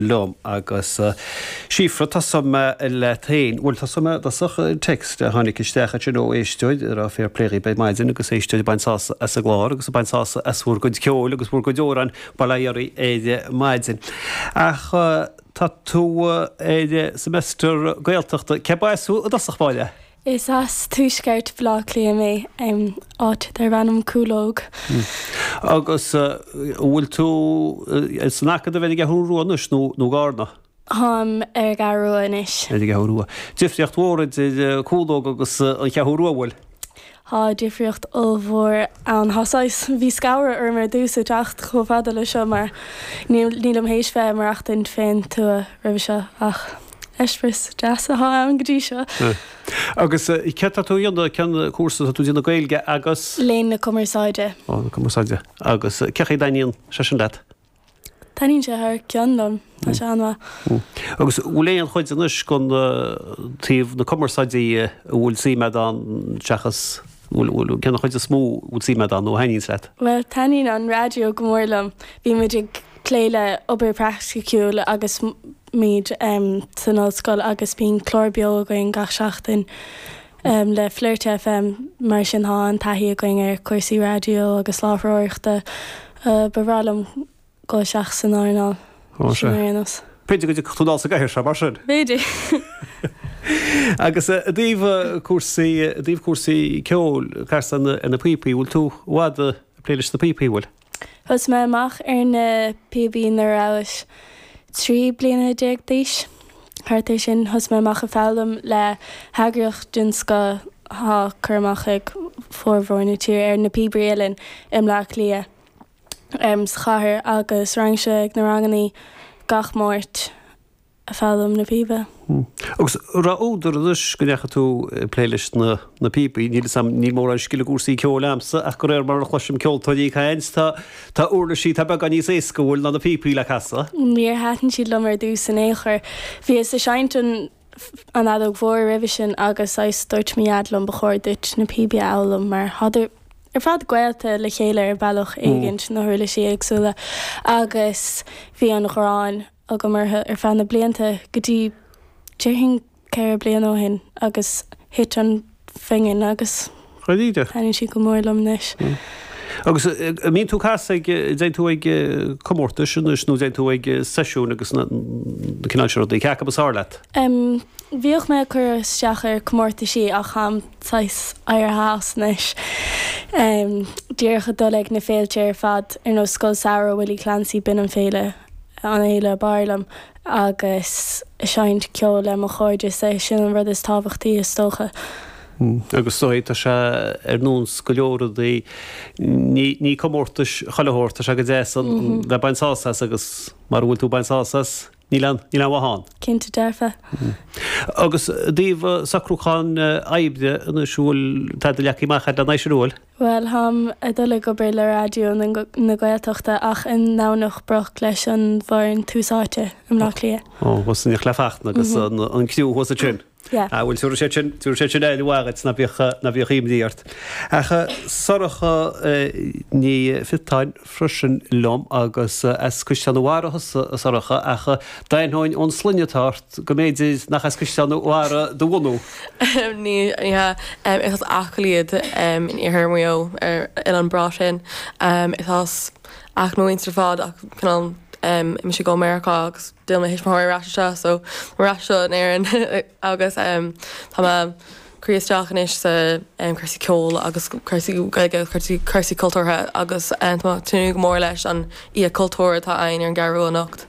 liom agus Síofra tosóidh mé leat féin. Bhuel, tosóidh mé i dtosach. text, a tháinig isteach ansin ó éisteoir ag rá fair play dhaoibh ar maidin agus éisteoir ag baint sásamh as an gclár agus ag baint sásamh as bhur gcuid ceoil agus bhur gcuid amhrán bail ó Dhia oraibh ar maidin. Ach tá tú ar semester Gaeltachta. Cé mb'as thú i dtosach, Máire? Is as tuaisceart Bhaile Átha Cliath mé, áit darb ainm Cúlóg. Agus an bhfuil tú san Acadamh ar an gCeathrú Rua anois nó i gCarna? Táim ar an gCeathrú Rua anois. Ar an gCeathrú Rua. Difríocht mhór idir Cúlóg agus an Cheathrú Rua, an bhfuil? Tá difríocht ollmhór ann. Tá saghas, bhí scanradh orm ar dtús ag teacht chomh fada leis seo mar nílim théis bheith ag maireachtaint fén tuath roimhe seo ach. eispéis deas atá ann go dtí seo. Agus céard atá tú a dhéanamh, cén cúrsa atá tú a dhéanamh Gaeilge agus? Léinn na Cumarsáide. Ó, na Cumarsáide. Agus cén chaoi a dtaitníonn sé sin leat? Taitníonn sé thar cionn liom, tá sé an-mhaith. Agus an bhfuil aon chuid anois de thaobh na cumarsáide a bhfuil suim a'd ann seachas, cén chuid is mó a bhfuil suim a'd ann nó a thaitníonns leat? Bhuel, taitníonn an raidió go mór liom. Bhí muid ag plé le obair praiticiúil agus. Bímid san ollscoil agus bíonn clár beo againn gach seachtain le Flirt FM, mar sin tá an-taithí againn ar chúrsaí raidió agus láithreoireachta. Ba bhreá liom dul isteach san earnáil sin ar aon nós. B'fhéidir go dtiocfadh tú dul sa gcathaoir seo, mar sin? B'fhéidir! Agus i dtaobh cúrsaí ceoil, casann tú na píopaí, bhfuil tú i bhfad ag plé leis na píopaí, an bhfuil? Thosaigh mé amach ar na píobaí nuair a rabhas trí bliana déag d'aois, thart ar sin. Thosaigh mé amach ag foghlaim le heagraíocht den scoth atá cur amach ag formhór na tíre air Na Píobairí Uilleann i mBleá Cliath, sa chathair, agus raghainnse ag na rangannaí gach Máirt. ag foghlaim na píbe. Agus raibh údar anois go ndeachaigh tú ag plé leis na na píobaí. Níl 'fhios a'm, níl mórán scil i gcúrsaí ceoil a'msa ach de réir mar a chloisim ceoltóirí ag caint, tá tá uirlisí atá beagán níos éasca an bhfuil ná na píopaí le casadh. Níor thaitin siad liom ar dtús in aon chor. Bhíos a' seinnt an an fheadóg mhór roimhe sin agus saghas dúirt mo Dhaid liom ba chóir duit na píobaí a fhoghlaim mar thádar ar fad gaolta le chéile ar bhealach éigint, na huirlisí éagsúla agus bhí an ghráin agam orthu ar feadh na blianta go dtí déarfainn ceithre bliana ó shin agus thit an phingin agus taitníonn siad go mór liom anois. Agus an mbíonn tú ag casadh ag, an dtéann tú ag comórtais anois nó an dtéann tú ag seisiúin agus na cineál sin rudaí, cé acu is fearr leat? Bhíodh mé ag cur isteach ar chomórtaisí ach táim saghas éirithe as anois, díreach ag dul ag na féilte ar fad ar nós Scoil Samhraidh Willie Clancy, bíonn an féile, an fhéile breá liom agus seinnt ceoil le mo chairde, is é sin an rud is tábhachtaí is dócha. Agus is dóigh tá sé ar nós go leor rudaí, ní comórtais chuile shórt, tá sé go deas a bheith ag baint sásamh as agus mara bhfuil tú ag baint sásamh as, níl aon mhaith ann. Cinnte dearfa. Agus i dtaobh socrúcháin oibre anois, an bhfuil, tá do leaba cóirithe amach agat anois, an bhfuil? Bhuel, tá mé a' dul ag obair le Raidió na Gaeltachta ach i nDomhnach Broc leis an bhfoireann Tús Áite i mBleá Cliath. Ó, thuas san Ardchathair le Fachtna agus an criú thuas ansin. Yeah. Ah, bhuel, tabharfaidh siad sin, tabharfaidh siad sin aire mhaith dhuit, ná bíodh, ná bíodh imní ort. Ach Sorcha Ní Fhéichín. freisin liom agus as Caisleán a Bharra thusa, a Shorcha, ach d'aithneoinn ón sloinne atá ort go mb'fhéidir nach as Caisleán a Bharra do bhunú. Ní hea. Is as Acaill iad, in iarthar Mhaigh Eo, ar an oileán breá sin. Is as Acaill mo mhuintir ar fad ach cineál d'imigh muid go Meiriceá agus d'fhill mo thuismitheoirí ar ais anseo so muid ar ais anseo in Éirinn agus tá mé cur isteach anois sna cúrsaí ceoil agus cúrsaí Gaeilge, cúrsaí cultúrtha agus tá mé ag tnúth go mór leis an Oíche Chultúir atá againn ar an gCeathrúin anocht.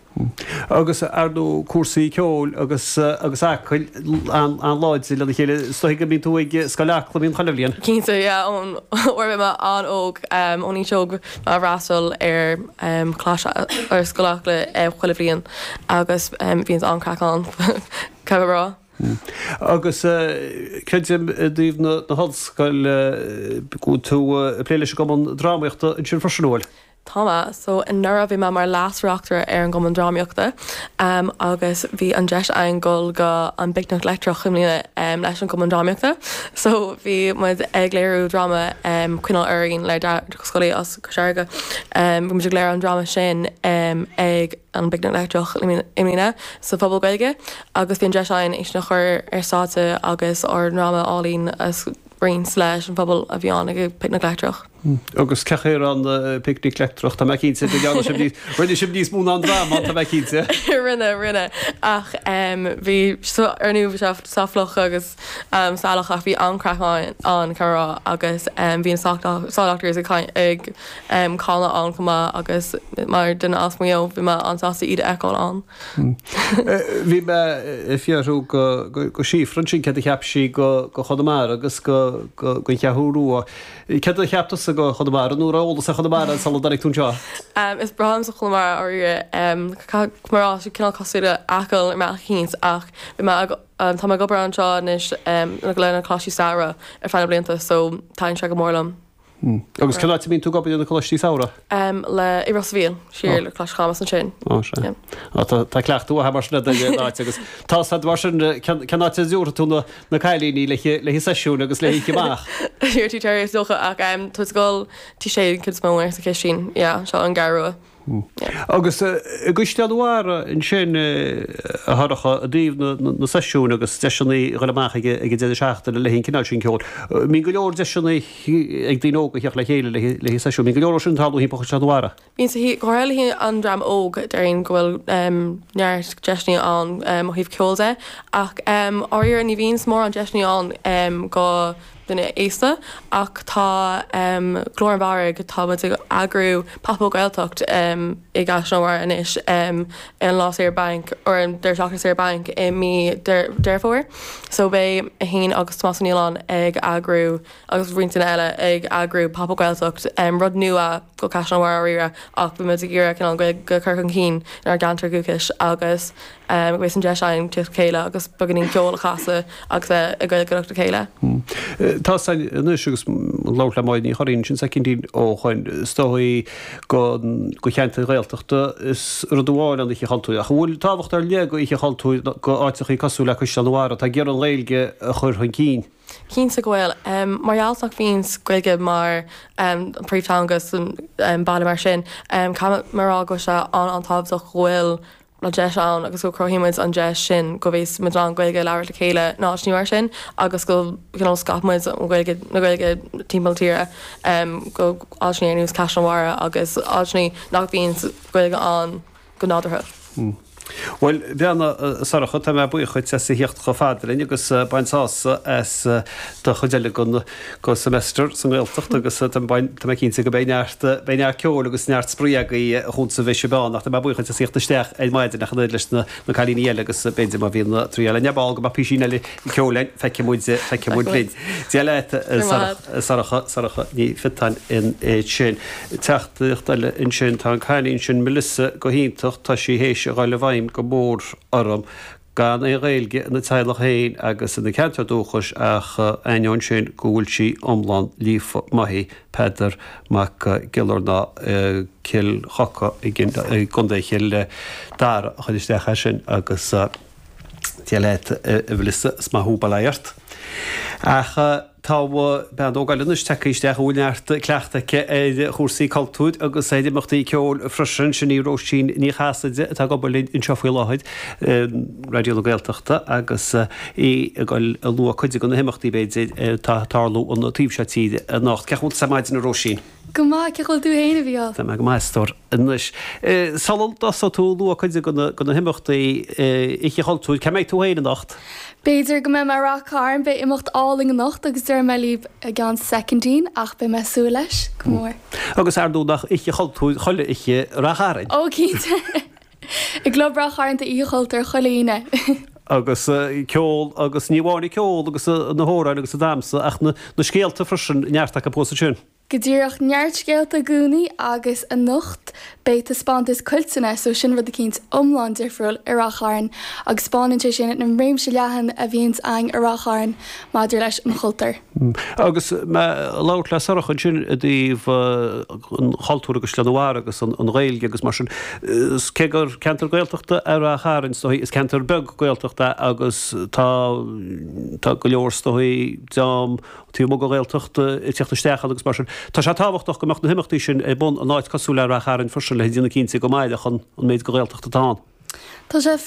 Agus ar ndóigh cúrsaí ceoil agus agus Acaill an-láidir lena chéile, is dóigh go mbíonn tú ag Scoil Acla, an mbíonn, chuile bhliain? Cinnte, yeah, ón uair a bhí mé an-óg, ón aois óg, bhí mé ag freastal ar, ar Scoil Acla chuile bhliain agus bhíonn an-chraic ann, caithfidh mé a rá. Hm. Agus creidim i dtaobh na hollscoile go bhfuil tú ag plé leis an gCumann Drámaíochta ansin freisin, an bhfuil? Tá mé. So anuraidh bhí mé mar Leas-Reachtaire ar an gCumann Drámaíochta agus bhí an deis againn dul go an bPicnic Leictreach i mbliana leis an gCumann Drámaíochta. So bhí muid ag léiriú dráma Coinneáil Orainn le Darach Ó Scolaí as Cois Fharraige. Bhí muid ag léiriú an dráma sin ag an bPicnic Leictreach i mbliana sa Phuball Gaeilge agus bhí an deis againn é sin a chur ar stáitse agus ár ndráma álainn a roinnt leis an phobal a bhí ann ag an bPicnic Leictreach. Agus cén chaoi a raibh an bPicnic Leictreach, tá mé cinnte go ndearna sibh níos, rinne sibh níos mó ná an dráma, tá mé cinnte. Rinne, rinne, ach bhí, ar ndóigh bhí sé sách sramach agus salach ach bhí an-chraic ann, caithfidh mé a rá, agus bhí na Saw Doctors ag canadh ann chomh maith agus mar dhuine as Maigh Eo, bhí mé an-sásta iad a fheiceáil ann. Bhí mé ag fiafrú go Shíofra ansin céard a cheap sí go Chonamara agus gon Cheathrú Rua. Céard a cheap tusa go Chonamara nó an raibh eolas agat ar Chonamara sula dtáinig tú anseo? Is breá liomsa Conamara dháiríre. Caithfidh mé a rá, tá sé cineál cosúil le Acaill ar bhealach eicínt ach bhí mé ag, tá mé ag obair anseo anois leis na coláistí samhraidh ar feadh na blianta so taitníonn sé go mór liom. Agus cén áit a mbíonn tú ag dul le haghaidh na Coláistí Samhraidh? le i Ros a' Mhíl, siar le Coláiste Chamuis ansin. Ó sé. Ó tá tá cleachtadh agat mar sin le duine in áit agus tá a fhios agat mar sin cén cén áit a dtabharfaidh tú na na cailíní le haghaidh le haghaidh seisiúin agus le haghaidh oíche amach? Iarr tú téiréir is dócha ach tabhair tú ag dul Tigh Sé an ceann is mó or sa Chistin yeah sa gCeathrú Rua. Hm. Agus i gCaisleán a' Bharraigh ansin, a Shorcha, i dtaobh na seisiún agus deiseanna a ghoil amach ag an deireadh seachtaine le haghaidh an cineál sin ceoil. An mbíonn go leor deiseanna ag daoine óga theacht le chéile le haghaidh seisiún. An mbíonn go leor de sin ag tarlú timpeall Chaisleán a' Bharraigh. Bíonn sa chaoi, go háirithe le haghaidh an dream óg, déarfainn go bhfuil neart deiseanna ann ó thaobh ceoil de. Ach, dháiríre, ní bhíonn mórán deiseanna ann do. daoine aosta ach tá Glór an Bharraigh, tá muid ag eagrú Pop Up Gaeltacht i gCaisleán a' Bharraigh anois ar an lá saoire bainc, or an deireadh seachtaine saoire bainc i mí Deireadh Fómhair so beidh mé fhéin agus Tomás Ó Nialláin ag eagrú agus roinnt daoine eile ag eagrú Pop Up Gaeltacht, rud nua go Caisleán a' Bharraigh dháiríre ach beidh muid ag iarradh cineál an Ghaeilge a chur chun cinn inár gceantar dúchais agus. agus an deis againn teacht le chéile agus beagáinín ceoil a chasadh agus a bheith ag Gaeilgeoireacht le chéile. Tá san anois agus ag labhairt le Máirín Ní Churraoin, ansin secondín ó shin, is dóigh do do cheantair Ghaeltachta is rud amháin an Oíche Chultúir, ach an bhfuil tábhacht ar leith ag Oíche Chultúir go áiteachaí cosúil le Caisleán a' Bharraigh, atá ag iarraidh an Ghaeilge a chur chun cinn? Cinnte go bhfuil. Mar gheall nach bhíonn Gaeilge mar an príomhtheanga an phobail mar sin, caithfidh mé a rá go bhfuil sé an-tábhachtach go bhfuil, an deis ann agus go chruthaíonn muid an deis sin go bhféadfadh muid an Ghaeilge a labhairt le chéile in áiteanna mar sin agus go cineál scaipfidh muid scéal na Gaeilge timpeall na tíre go áiteanna ar nós Caisleán a' Bharraigh agus áiteanna nach bhíonn Gaeilge ann go nádúrtha. Bhuel, Bríona Sorcha, tá mé buíoch dhuit as a thíocht chomh fada linn agus bain sásamh as an chuid eile den. den semester sa nGaeltacht agus tá mé cinnte go mbeidh neart beidh neart ceoil agus neart spraoi agaibh a chunt sa mhise beann nach tá mé buíoch as thíocht isteach ar maidin ach an oiread leis na na cailíní eile agus a b'fhéidir má bhíonn triail againn ar ball go mbeadh písín eile ceoil ann feicfidh muid feicfidh muid linn Dia leat Sorcha Sorcha Ní Phiotáin ansin teachtaireacht eile ansin tá an cailín sin Melissa go hiontach tá sí th'éis a dhul i bhfeidhm go mór orm gan aon Ghaeilge ina teaghlach féin agus ina ceantar dúchais ach ainneoin sin go bhfuil sí iomlán líofa. Maith í. Peadar Mac Giollarnáth, i gCill Choca i gContae Chill Dara, a chuir isteach é sin, agus Dia leat a Mhilissa, is maith thú, bail ó Dhia ort. Ach. Tá bean óg eile anois tagtha isteach a bhfuil neart cleachtaidh aici ar chúrsaí cultúir agus ar imeachtaí ceoil freisin, sin í Róisín Ní Chasaide atá ag obair linn anseo faoi láthair in Raidió na Gaeltachta agus í ag goil ag lua cuid de na himeachtaí, b'fhéidir, atá ag tarlú an taobh seo tíre anocht. Cén chaoi a bhfuil tusa ar maidin, a Róisín? Go maith, cén chaoi a bhfuil tú féin, a Bhláthnaid? Tá mé go maith, a stór. Anois, sula dtosóidh tú ag lua cuid de na himeachtaí Oíche Chultúir. Cá mbeidh tú féin anocht? B'fhéidir go mbeidh mé i Rath Cairn, beidh imeacht álainn anocht agus déarfaidh mé libh i gceann soicindín, ach beidh mé ag súil leis go mór. Agus ar ndóigh nach Oíche Chultúir chuile oíche i Rath Chairn? Ó, cinnte! I gClub Ráth Chairn tá Oíche Chultúir chuile Aoine. agus ceol agus ní amháin an ceol agus na hamhráin agus an damsa ach na scéalta freisin, neart acu fós ansin. Go díreach, neart scéalta i gcónaí agus anocht beidh taispeántas Cuilteanna so sin rud eicínt iomlán difriúil i Ráth Chairn agus spáineann sé sin an réimse leathan a bhíonns a'inn i Ráth Chairn maidir leis an chultúr. Agus mé ag labhairt le Sorcha ansin i dtaobh an chultúir agus Chonamara agus an Ghaeilge agus mar sin, cé gur ceantar Gaeltachta é Rath Chairn, is dóigh, is ceantar beag Gaeltachta é agus tá tá go leor, is dóigh, dream taobh amuigh den Ghaeltacht ag teacht isteach ann agus mar sin. Tá sé tábhachtach go mbeadh na himeachtaí sin ar bun in áit cosúil le Rath Chairn freisin le déanamh cinnte go mairfeadh an méid den Ghaeltacht atá ann. Tá sé.